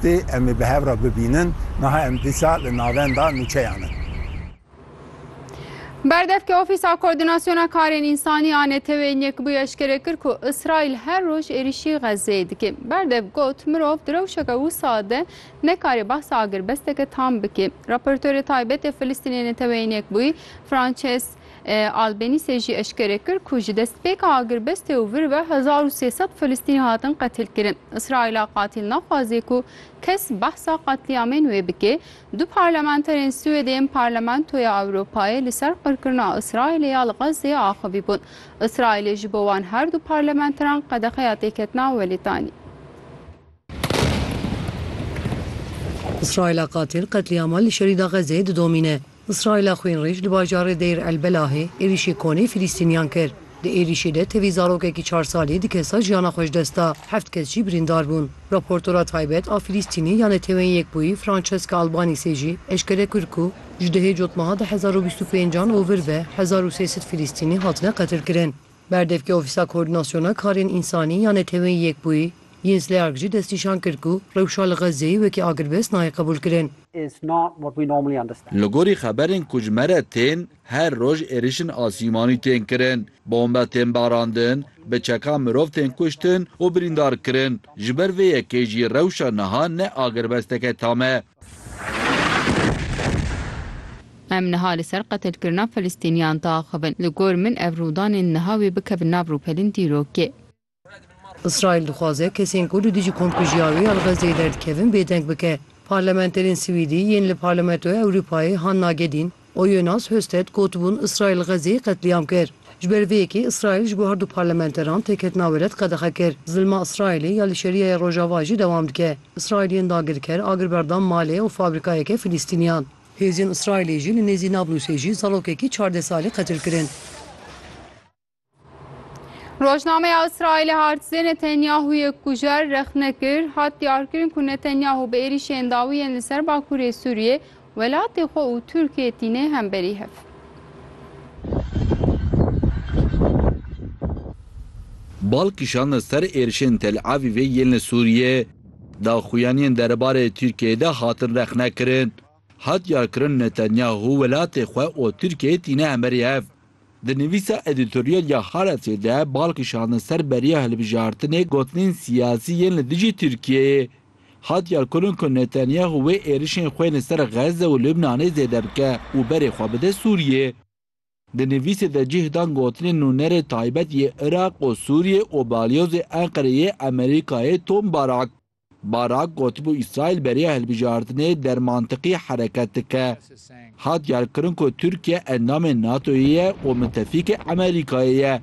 Tê em ê bi hev re bibînin. Niha em dîsa li navenda nûçeyan in. Berdevke Ofîsa Koordînasyona Karên Însanî a Neteweyên Yekbûyî eşkere kir ku Îsraîl her roj êrîşî Xezzeyê dike. Berdev got, Mirov di rewşeke wisa de nekarê behsa agirbesteke tam bike. Raportorê Taybet ê Filistînê Neteweyên Yekbûyî Frances Albanîsê jî eşkere kir ku ji destpêka agirbestê û vir ve hezar û sê sed Filistînî hatin qetilkirin. Îsraîla qatîl naxwaze ku kes behsa qetlîamên wê bike. Du parlamenterên Swêdê yên Parlamentoya Ewropayê li ser qirkirina Îsraîlê ya li Xezzeyê axivîbûn. Îsraîlê ji bo wan her du parlamenteran qedexeya têketina welêt anî. Îsraîla qatil qetlîama li Şerîda Xezê didomîne. Îsraîla xwînrêj li bajarê Deyr El Belahê êrîşê konê Fîlîstîniyan kir. Di êrîşê de tevî zarokekî çar salî di kesa jiyana xwe ji dest da, heft kes jî birîndar bûn. Raportora taybet a Fîlîstînê ya Neteweyên Yekbûyî Francesca Albanîsê jî eşkere kir ku ji dihê cotmeha du hezar û bîst û pêncan û vir ve hezar û sê sed Fîlîstînî hatine qetilkirin. Berdevkê Ofîsa Koordînasyona Karên Însanî ya Neteweyên Yekbûyî, Jens Leark jî destnîşan kir ku rewşa li Xezzeyê wekî agirbest nayê qebûlkirin. Li gorî xeberên ku ji me re tên, her roj êrişên asîmanî tên kirin, bombe tên barandin, bi çekan mirov tên kuştin û birîndar kirin. Ji ber vê yekê jî rewşa niha ne agirbesteke tam e. Em niha li ser qetilkirina Filistîniyan diaxivin. Li gor min ev rûdanên niha wê bikevin nav rûpelên dîrokê. Îsraîl dixwaze kesên ku li dijî komkujîya wê ya li Xezzeyê derdikevin bêdeng bike. Parlamenterên Swîdî yên li Parlamentoya Ewropayê han nagedîn, Oyunas Husted gotibûn Îsraîl li Xezê qetlîam kir. Ji ber vê yekê Îsraîl ji bo her du parlamenteran têketina we red qedexe kir. Zilma Îsraîlê ya li Şerîaya Rojava jî dewam dike. Îsraîl yên dagirker agir berda malê û fabrîkayeke Filîstîniyan. Hêzên Îsraîlê jî li nêzî Nablusê jî zarokekî çardeh salî qetil kirin. Rojnameya Îsraîlê Hartzê Netanyahûyê kujer rexne kir, hat diyarkirin ku Netanyahû bi êrîşên dawî yên li ser Bakurê Sûriyê welatê xwe û Tirkiyê tîne hemberî hev. Bal kişandin ser êrişên Tel Avîvê yên li Sûriyê, daxuyaniyên derebarê Tirkiyeyê de hatin rexnekirin. Hat diyarkirin Netanyahu welatê xwe û Tirkiyeyê tîne hemerî hev. Di nivîsa edîtoryal ya Haaretzê de bal kişandin ser beriya hilbijartinê gotinên siyasî yên li dijî Tirkiyeyê. Hat diyarkirin ku Netanyahu wê êrişên xwe yên li ser Xezze û Lubnanê zêde bike û berê xwe bide Sûriyê. Di nivîsê de cih dan gotinên nûnerê taybet yê Iraq û Sûriyê û balyozê Enqerê yê Amerîkayê Tom Barak. Barak gotibû Îsraîl beriya hilbijartinê der mantiqî hereket dike. Hat diyarkirin ku Tirkiye endamê NATO'yê ye û mitefîkê Amerîkayê ye.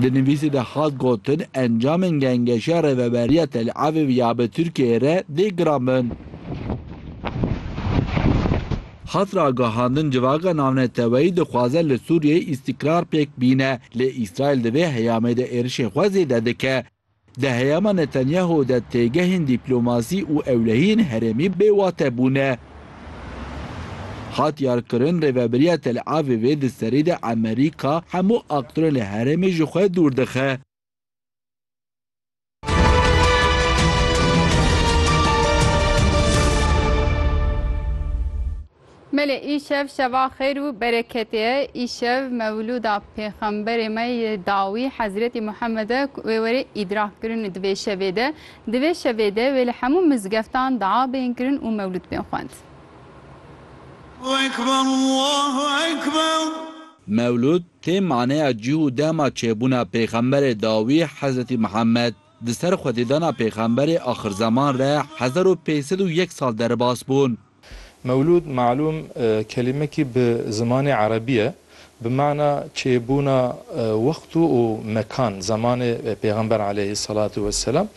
Di nivîsê de hat gotin, encamên gengeşiya Rêveberiya Tel Avîv ya bi Tirkiyeyê re dê girandbin. Hat ragihandin civaka navneteweyî dixwaze li Sûriyeyê îstîkrar pêk bîne, lê Îsraîl di vê heyamê de êrişên xwe zêde dike. Di heyama Netanyahu de têgehên dîplomasî û ewlehiyên herêmî bêwate bûne. Hat yarkirin rêveberiya Tel Avivê di serî de Emerîka hemû aktorên li herêmê ji xwe dûr dixe. Belê îşev şeva xêr û bereketê ye, îşev mewlûda pêxemberê me yê dawî Hezretî Muhammed e ku wê were îdrak kirin di vê şevê de. Di vê şevê de wê li hemû mizgeftan dua bên kirin û mewlûd bên xwend. Mewlûd tê maneya cih û dema çêbûna pêxemberê dawî Hezretî Muhammed. Di ser xwedîdana pêxemberê axirzeman re hezar û pênc sed û yek sal derbas bûn. Mewlûd malûm kelîmekî bi zimanê erebî ye bi mana çêbûna wext û mekan zemanê pêxember aleyhî selatû weselam.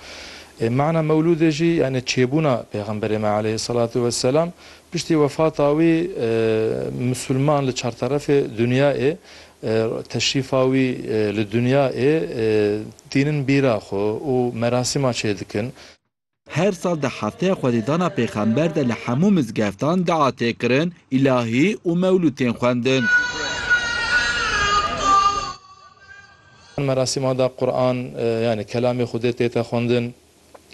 Mana mewlûdê jî yanî çêbûna pêxemberê me aleyhî selatû weselam. Piştî wefata wî misûlman li çarterefê dinyayê teşrîfa wî li dinyayê tînin bîra xwe û merasîma çêdikin. Her sal di hefteya xwedîdana pêxember de li hemû mizgeftan dua tê kirin, îlahî û mewlûd tên xwendin. Merasîma de Quran yanî kelamê Xwedê tê te xwendin.